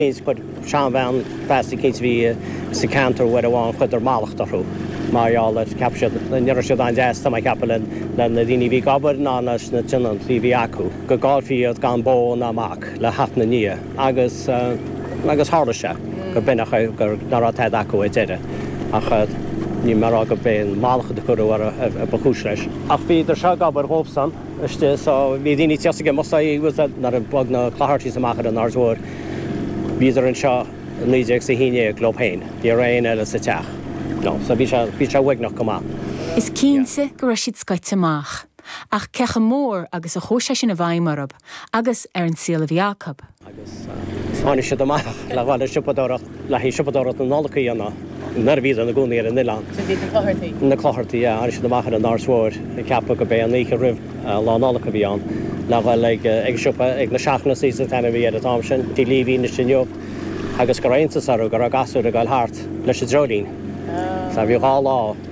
is chuir seanbhean feasa eicínt a bhí sa ceantar uair amháin chuir sí mallacht orthu mar gheall ar cheap siad ní raibh siad an-deas tá mé ag ceapadh le na daoine a bhí ag obair ná leis na tionóntaí a bhí acu go gcaillfí iad gan mac ná mac le theacht ina ndiaidh agus agus tharla sé gur b'in a chu gur ná raibh tada acu ar deireadh ach níl mé ag rá gur b'in mallacht a cuireadh orthu a a ba chúis leis ach bhíodar seo ag obair dhóibhsan istigh so bhí daoine ag tíocht ag imeacht so he was that nuair a bhog na Clohertys amach ar an Aird Mhóir. Bhíodar anseo i naoi déag is a haon dhéag leob féin. Ní raibh aon eile sa teach. So bhí sé, bhí sé uaigneach go maith. Is cinnte go raibh siad scoite amach. Ach cé chomh mór agus a chuaigh sé sin i bhfeidhm orthub agus ar an saol a bhí acu? Agus tháinig siad amach le dhul ag siopadóireacht. Le haghaidh siopadóireacht na Nollag a dhéanamh nuair a bhíodar ina gcónaí ar an oileán. Sin iad na Clochartaí? Na Clochartaí, yeah. Tháinig siad amach ar an Aird Mhóir ag ceapadh gurb é an oíche roimh Lá Nollag a bhí ann. Le ghoil ag an siopa, ag na Shaughnessy's is ainm a bhí air an t-am sin, Tigh Leavy anois inniu, agus go raibh iontas orthu go raibh na gasúir ag goil thart leis an dreoilín. Sea, bhí dhá lá.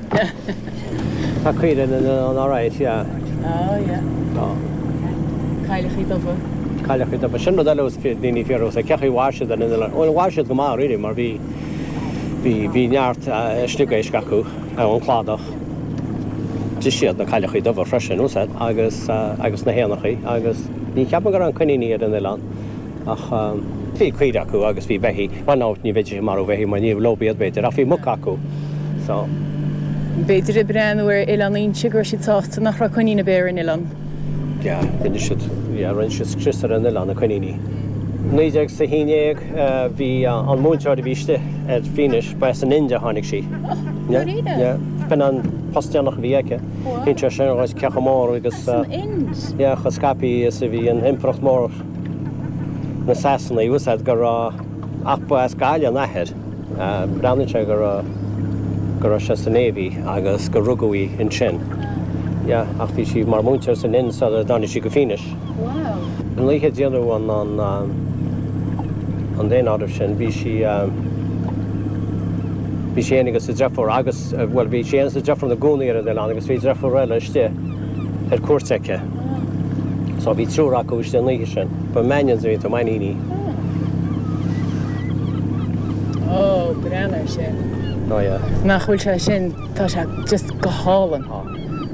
Tá caoire in an RIS, yeah. Oh, yeah. Tá. Cailleachaí dubha. Cailleachaí dubha. Sin rud eile ar ndóigh cén chaoi ar mhair siad ar an oileán. Bhuel, mhair siad go maith, really, mar bhí, bhí, bhí neart sliogéisc acu ann, cladach. D'ith siad na cailleachaí dubha freisin, tá a fhios agat, agus, agus na héanacha agus ní cheapfainn go raibh aon choiníní ar an oileán. ach bhí caoire acu agus bhí beithígh, bhain amharc ní bheidís ag marú beithígh mar níorbh leob iad b'fhéidir ach bhí muca acu so. B'fhéidir ag breathnú ar Oileán Fhínis go raibh siad sásta nach raibh coinín ar bith ar an oileán. Yeah rinne siad yeah rinne siad scrios ar an oileán, na coiníní. Naoi déag is a haon dhéag bhí an múinteoir a bhí istigh ar Fínis ba as an Ind a tháinig sí. Yeah yeah b'in an post deireanach a bhí aici. Léiríonn sé sin cé chomh mór agus yeah chomh scaipthe is a bhí an impireacht mór. na Sasanaigh, tá a fhios agat go raibh ach ba as Gaillimh an t-athair. Breathnaíonn sé go raibh go raibh sé sa Navy agus gur rugadh í ansin. Yeah, ach bhí sí mar mhúinteoir san Ind sular tháinig sí go Fínis. Wow! An oíche a déanadh an an daonáireamh sin bhí sí bhí sí fhéin agus a deirfiúr agus, bhuel bhí sí fhéin agus a deirfiúr ina gcónaí ar an oileán agus bhí deirfiúr eile istigh ar cuairt aici. So bhí triúr acu istigh an oíche sin. Ba Mannions a bhí iontu, Mainíní. Oh, breathnaigh ar sin. Oh yeah. Nach bhfuil sé sin, tá sé just go hálainn.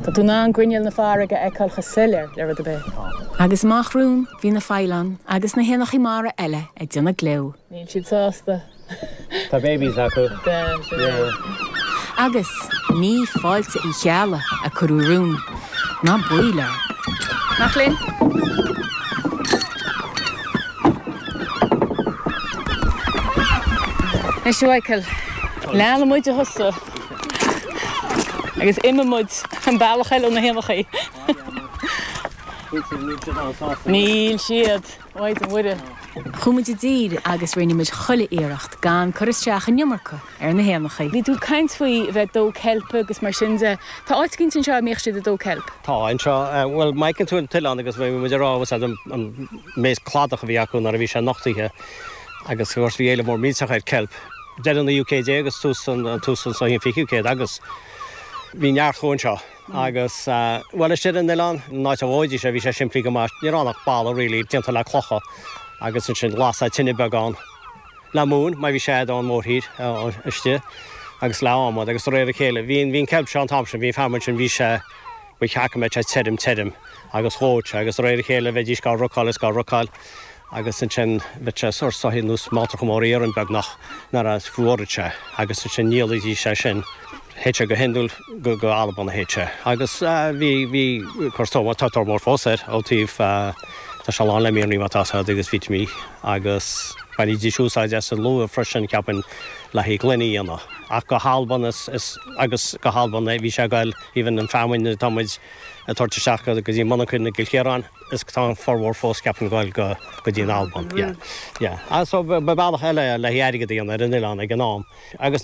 Tá tú in ann grinneall na farraige a fheiceáil chomh soiléir le rud ar bith. Agus amach romhainn bhí na faoileáin agus na héanacha mara eile ag déanamh gleo. Níl siad sásta. Tá babies acu. Agus ní fáilte Uí Cheallaigh a cuireadh romhainn, ná baol air. Mac léinn. Is Shuaiceall. Leanann muid ar thosach agus imigh muid an bealach eile ó na héanachaí. Níl siad. Mhaighdean Mhuire. Chuaigh muid i dtír agus rinne muid chuile iarracht gan cur isteach an iomarca ar na héanachaí. Bhí tú ag caint faoi bheith ag dó ceilpe agus mar sin de. Tá áit éigin anseo a mbíodh siad ag dó ceilp? Tá, anseo. Bhuel, má fheiceann tú an t-oileán agus bhí muid ag rá, úsáid an méid cladach a bhí acu nuair a bhí sé nochtaithe agus, of course, bhí éileamh mór millteach ar cheilp, deireadh an naoú céad déag is tús an, tús an, so an fichiú céad agus bhí neart acu anseo. Agus, bhuel, istigh ar an oileán, an áit a ndóidís é, bhí sé simplí go maith, ní raibh ann ach balla really, déanta le clocha agus ansin lasadh tine beag ann le móin, mar bhí sé i bhfad ón mórthír istigh agus le adhmad agus de réir a chéile, bhí an ceilp seo an t-am sin, bhí an feamainn ansin, bhí sé, bhuel, ceapaim, bheadh sé tirim, tirim agus dhóite agus de réir a chéile bheidís dhá rocáil is dhá rocáil. agus ansin bhíodh sé sórt soithí nó mealltracha móra iarainn beagnach nuair a fhuaradh sé agus ansin dhíolaidís é sin. Théadh sé go hiondúil go go hAlbain a théadh sé agus bhí bhí cur so bhfuil tá tóir mór fós air ó taobh tá sé lán le mianraí má tá said agus vitimíní agus bhainidís úsáid as an luaith freisin ceapaim le haghaidh gloine a dhéanamh ach go hAlbain is is agus go hAlbain a bhí sé ag goil even an feamainn atá muid ag tabhairt isteach go dtí monarcha i gCill Chiaráin. is go bhfuil an formhór fós ceapaim ag dul go dtí an Albain, yeah, yeah, so ba bealach eile é le haghaidh airgead a dhéanamh ar an oileán ag an am agus.